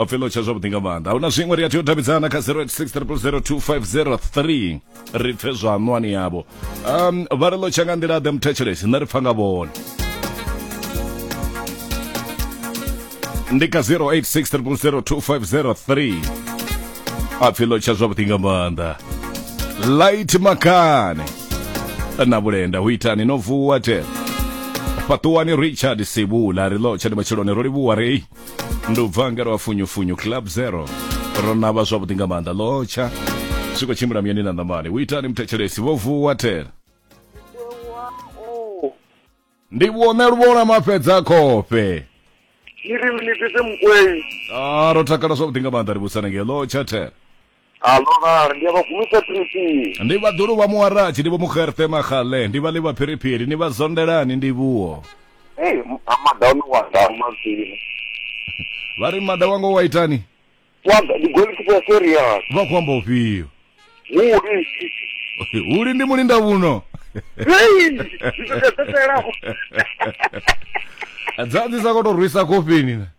o pfela u tsha zwavhuḓi nga maanḓa ahuna zwiṅwe ri a tea u davhidzana kha 0860002503 ri pfe zwa ṋwani yavho um vha ri ḽo tsha nga nḓila ḓe muthetshelesi nṋe ri pfa nga vhone ndi kha 0860002503 a pfhi ḽo tsha zwavhuḓi nga maanḓa light makane na vhulenda hu itani no vuwa tena fhaṱuwani richard sibula ri ḽo tsha ndi matshiloni ro livhuwa rei ndi u bva ngero wa funyufunyu club zero ro navha zwavhuḓi nga maanḓa lotsha zwi khou tshimbila muyani na ṋamani u itani muthetshelesi vho vuwa tela ndi vhone luvhola mafhedza khofhe iri minitete mukwenyi a ro takala zwavhuḓi nga maanḓa ri vhusana ngei lotsha tela Alo vhari ndi a vha gumisa phiripiri. Ndi vha ḓulu vha muwaratshi ndi vho mugerṱe maxale ndi vha ḽi vha phiripiri ni vha zondelani ndi vhuwo. Hey, amada ono wa dama zwino. Vha ri mada wanga wa itani? Wa ndi goalkeeper serious. Vha khou amba ufhio? Huli. Huli ndi mulinda vhuno. Hey, ndi ḓo ḓela. Dza ndi sa khou tou rwisa kofini.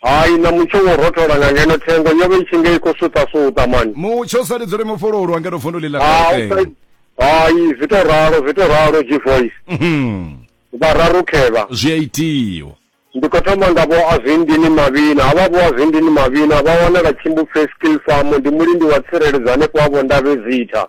Hai, na mutsho wo rothola nga ngeno thengo yo vha i tshi nga i khou suṱasuṱa mani. Mutsho sa lidzuli mufhululwa ngeno vunduni ḽa Gauteng. Hai, zwi tou ralo, zwi tou ralo G-Voice. Mhm. Vhararu khevha. Zwi a itiwa. Ndi khou thoma nga vho Azwindini Mavhina. Havha vho Azwindini Mavhina vha wanala Tshimbupfe Skill Farm, ndi mulindi wa tsireledzo hanefho ha Vho Ndabezitha.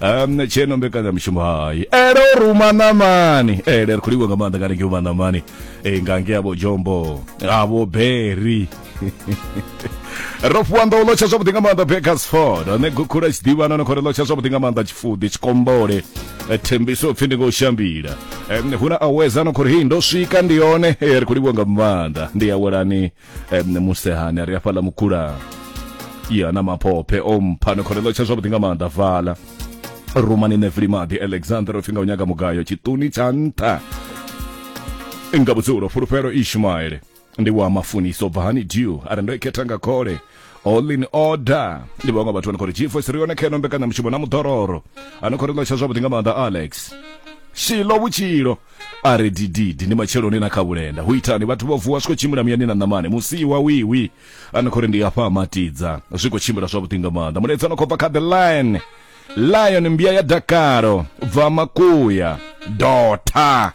um tsheno mbekanyamushumo hai ele o ruma ṋamani ele ri khou livha nga maanḓa kana ngeo maṋamani e nga ngea vho jombo avho beri ro fhiwa nḓo lotsha zwavhuḓi nga maanḓa bakersford ane gukhula tshiḓivhana no khou ri lotsha zwavhuḓi nga maanḓa tshifuḓi tshikombole e, thembiso upfhi ndi ngo shambila hu na aweza no khou ri hei ndo swika ndi yone e, ri khou livha nga maanḓa ndi awelani um musehani a ri afhaḽa mukhula ya na maphophe o mpha ni khonelo tsha zwavhuḓi nga maanḓa vala rumani nevli maḓi alexander o pfi nga u nyaga mugayo tshiṱuni tsha nṱha nga vhudzulo fulufhelo ishumaele ndi wa mafuniso bva hani dew a re ndo i khetha nga khole all in order ndi vhaṅwe vhathu vhane khori gfos ri yone kha ino mbekanyamushumo na muḓororo ano khori ḽosha zwavhuḓi nga maanḓa alex shilo vhutshilo a re dididi ndi matsheloni na kha vhulenda hu itani vhathu vho vuwa zwi khou tshimbila muyani na ṋamane musiwa wiwi ano khori ndi afha matidza zwi khou tshimbila zwavhuḓi nga maanḓa muledzi ano khou bva kha the line lion mbia ya dakalo bva makuya dota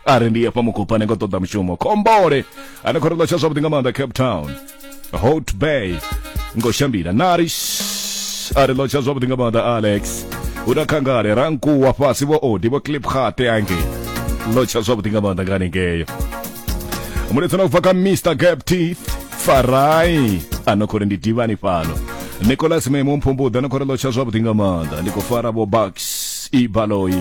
a ri ndi hafha mukupa ni ngo ṱoḓa mushumo khombole ane khou ri ḽotsha zwavhuḓi nga maanḓa cape town hot bay ngo shambila narish a ri ḽotsha zwavhuḓi nga maanḓa alex hu na khangale rankuwa fhasi vho odi vho clip khate ange ḽotsha zwavhuḓi nga maanḓa nga hanengeyo muletso na ubva kha mr gap teeth farai ano khou ri ndi divani fhano nicolas memo mphumbuḓa ni khou ri ḽotsha zwavhuḓi nga maanḓa ndi khou fara vho bucks ibaloyi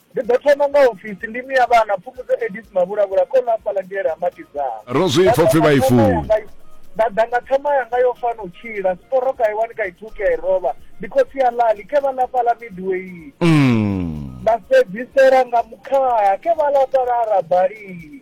Ndi ḓo thoma nga ofisi, ndi Mia Vhana, Phumudzo Edith Mavhulavhula, Kholo Hafhaḽa Ndi Yela Matidzana. Ro zwi pfa u pfi vha i funa. Nda ḓa nga thama yanga yo fana u tshila, Siporo ka i wani ka i thuki ya i rovha, Ndi khotsi ya Lali, ke vha ḽa fhaḽa Midway. Nda fhedzisela nga Mukhaha, ke vha ḽa fhaḽa ha Rabali.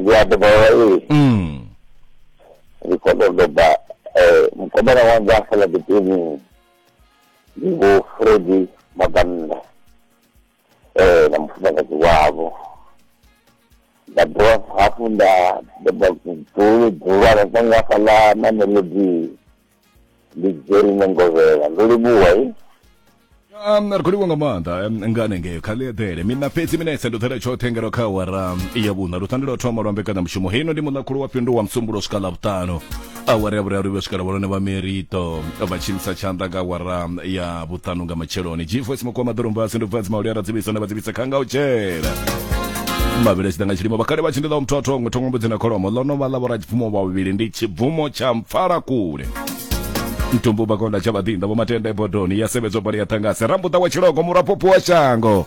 ndi a dovholola iyi mm. ndi khou tou doba eh, mukomana wanga a sala ḓipeni ndi vho fredi mabannda eh, na mufumakadzi wavho nda dovha hafhu nda doba dzulu dzulwana kwanga hafhaḽa na melodi ndi jerine ngovhela ndo livhuwa i Um, ri khou livhuwa nga maanḓa um, nga hanengeo kha ḽi eḓele mina fhedzi minetse ndo ḓela tshoṱhe ngero kha awara ya vhuṋa lu thandela u thoma lwa mbekanyamushumo heino ndi muḽakhulu wa fhindu wa musumbulo u swika ḽa vhuṱanu awara ya vhuraru vhe swika ḽa vhalone vha merito vha tshimisa tshanḓa nga awara ya vhuṱanu nga matsheloni gvoice mukuwa maḓorombasi ndo bva dzima uliyara dzivhisa nda vha dzivhisa kha nga u tshela mavhili a tshi ḓa nga tshilimo vhakhale vha tshi ndi ḽa muthu a thongo thongo mbudzi na kholomo ḽo no vha ḽa vhoradzipfumo vhavhili ndi tshibvumo tsha mpfala kule mtumbu vhakonda tsha vhaḓinḓa vho matenda ebodoni ya sevhedzwa bali ya ṱangase rambuḓa wa tshilogo muraphopo wa shango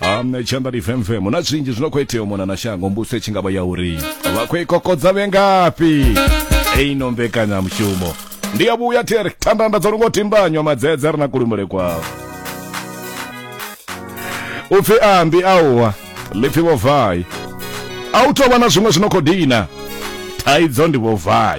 Um, tshanḓa ndi femfemo na zwinzhi zwino khou itea mona na shango mbuso tshi ngavha ya uri vha khou i kokodza vhengafhi eino mbekanyamushumo ndi ya vhuya theri thandanda dzo longo timbanywa madzedze ri na kulumele kwao u pfi ambi auwa ḽipfi vhovai a u tou vha na zwiṅwe zwino khou dina thaidzo ndi vhovai